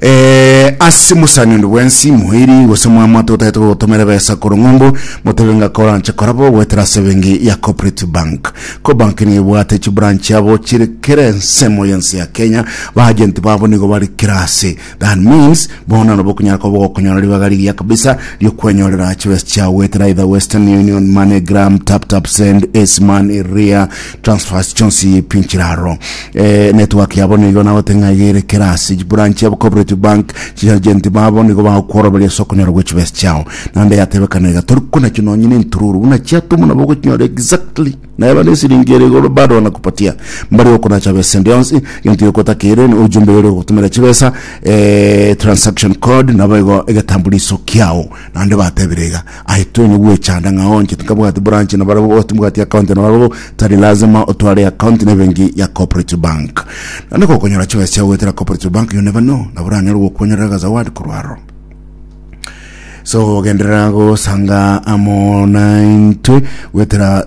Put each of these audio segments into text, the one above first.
Eh, ase mosani onde bwensi moiri gose mwamwate otaete gogotomera ebesa korwa ng'umbu motebe ng'a koranche korabo goetera ase ebengi ya Cooperative Bank. Cobank nigo ebwate chibranch chiabo chire kera ensemo y'ense ya Kenya. Baagenti babo nigo bare kera ase. That means bono nabo okonyara koba ogokonyora ribaga rigiya kabisa ri'okwenyorera chibesa chiao goetera either Western Union, MoneyGram, TapTapSend, Acemoney, Ria, transfers chionsi pinchire aro eh, network yabo nigo nagote ng'a igere kerasi branch yabo cooperative bank chiagenti babo nigo bagokworoberia ase okonyora gwe chibesi chiao naende yatebekana iga tori kona chio nonye ne ntururu buna chiatuma nabo ogochinyora exactly naye bana esiringi ere igoro bado wanakupatia mbari okonacha besa endi yonsi genti yokotakere ni ujumbe yore ogotumera chibesa eh, transaction code nabo igo egetambuliso kiao naende batebire iga Aye twene gwechanda ng'a onche tinkabwati branch na barabwo bosi timbwati account na barabwo tari lazima otware account na ebenki ya cooperative bank naende gokonyora chibesa chiao goetera cooperative bank yone bano nabo oranyare gokwonyorera agazawadi korwa aro so ogenderera gosanga amo naintwe gwetera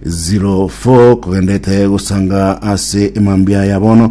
0724256504 kogendete gosanga ase emambia ya bono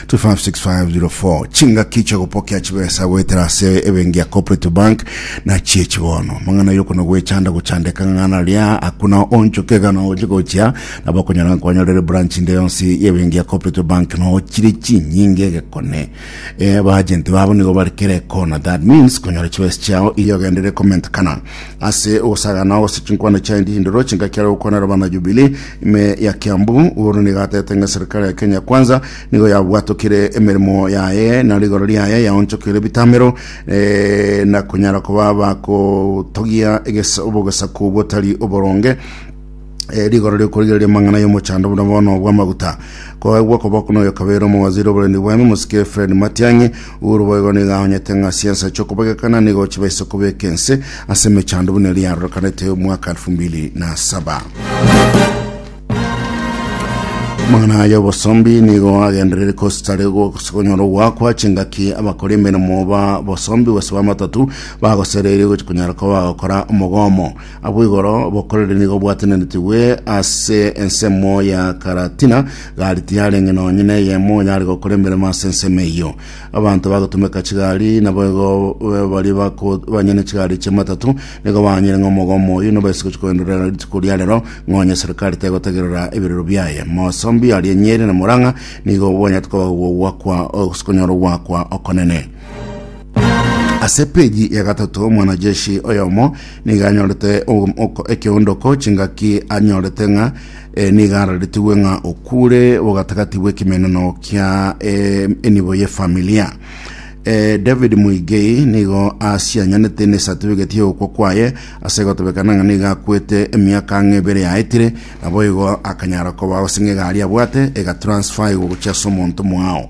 256504 Chingaki chi'ogopokea chibesa goetera ase ebenki ya Cooperative Bank nachio echi bono. Amang'ana y'okuna gwechanda gochandeka ng'ana ria akuna onchoke ekana oche gochia nabo okonyora nkwanya rere branch inde yonsi y'ebenki ya Cooperative Bank no chire chinyinge egekone eh, abagenti babo nigo bari kera ekona that means konyora chibesa chiao iyogendere comment kana ase ogosagana gose chinkwana chia endindoro chingaki are gokwana erabana Jubilee ime ya Kiambu. Uhuru nigo atete ng'a serikali ya Kenya Kwanza nigo yabwatokire emeremo yaye na rigoro riaye yaonchokire ebitamero eh, na konyara koba bakotogia eges- obogesaku botari oboronge Eh, rigoro riokorigereria amang'ana y'omochando buna bono bw'amaguta koegwa koba kuna oyo kabere omowaziri oborendi bwami mosike Fred Matiang'i uru boigo nigo ahonyete ng'a siansa chi'okobagekana nigo chiba ase kobeka ense ase emechando buna eria yarorekanete omwaka 2007 mang'ana aya obosombi nigo agenderere kositare konyora ogwakwa chingaki abakora emeremo ba bosombi gose bamatatu bagosereire gochi konyara koba bagokora omogomo Abwo igoro bokorere nigo bwatenenetigwe ase ensemo ya Karatina, gari tiyarenge nonye neyemo yare gokora emeremo ase ensemo eyio. Abanto bagotumeka chigari nabo igo eh, baria bako- banyene chigari chi'amatatu nigo banyire ng'a omogomo oyio nibo ase gochia koenderera rituko ria rero ng'onye serikali tegotegerera ebirero biaye. Mosombi aria Nyeri na Murang'a nigo banyete koba ogokwa okonyorwa ogwakwa okonene. Ase epeji ya gatato omwanajeshi oyomo nigo anyorete um, oko- ekeondoko chingaki anyorete ng'a eh, nigo araretigwe ng'a okure bogatagati bw'ekemeneno kia eh, enibo y'efamilia Eh, david muigei nigo asianyanete nesatifigeti y'ogokwa kwaye ase gotebekana ng'a nigo akwete emiaka ang'e ebere yaetire naboigo akanyara koba gose ng'a egari abwate egatransfaigwa gochia ase omonto mwao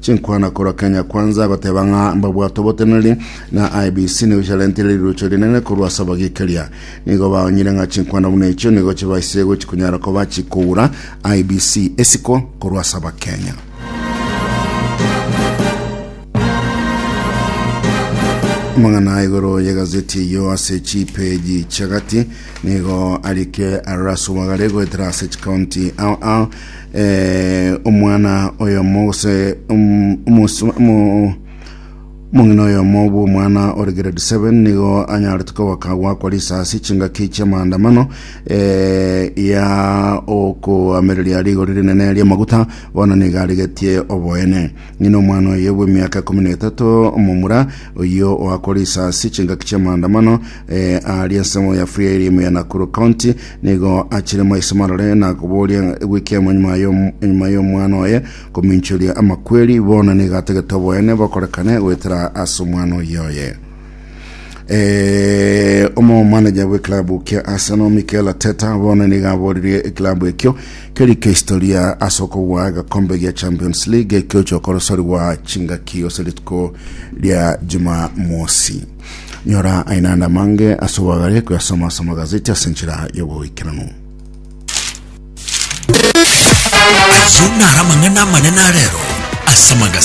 Chinkwana korwa Kenya Kwanza goteba ng'a mbabwate oboteneneri na IEBC nigo chiarentire rirocho rinene korwa ase abagekeria. Nigo baonyire ng'a chinkwana buna echio nigo chibaise gochi konyara koba chikogura IEBC esiko korwa ase Abakenya. Amang'ana igoro y'egazeti eyio ase chipeji chiagati nigo arike arore ase omwagare goetera ase chikaunti ao ao eh, omwana oyomo gose um, omosu- omo- omong'ina oyomo bw'omwana ore grade 7 nigo anyarete kogoka gwakwa risasi chingaki chi'amaandamano eh, ya okoamereria rigori rinene ri'amaguta bono nigo arigetie oboene Ng'ina omwana oye bw'emiaka ikomi na etato omomura, oyio oakora isasi chingaki chi'amaandamano eh, aria ensemo ya Fria eri ime ya Nakuru County, nigo achire maiso marore na koboria gw'ekiamo enyuma y'om- enyuma y'omwana oye kominchoria amakweri, bono nigo atagete oboene bokorekane goetera ase omwana oyio oye. Eh, omo manager bwe club kia Arsenal Mikel Arteta bono niga aboririe eclub ekio keri kihistoria ase okobua agakombe gia Champions League ekio chokorosorigwa chingaki ase rituko ria Jumamosi. Nyora ainanda mange ase obwagare koyasoma ase amagazeti ase enchera y'oboikeranu. Ayio nara amang'ana amanene arero ase amagazeti.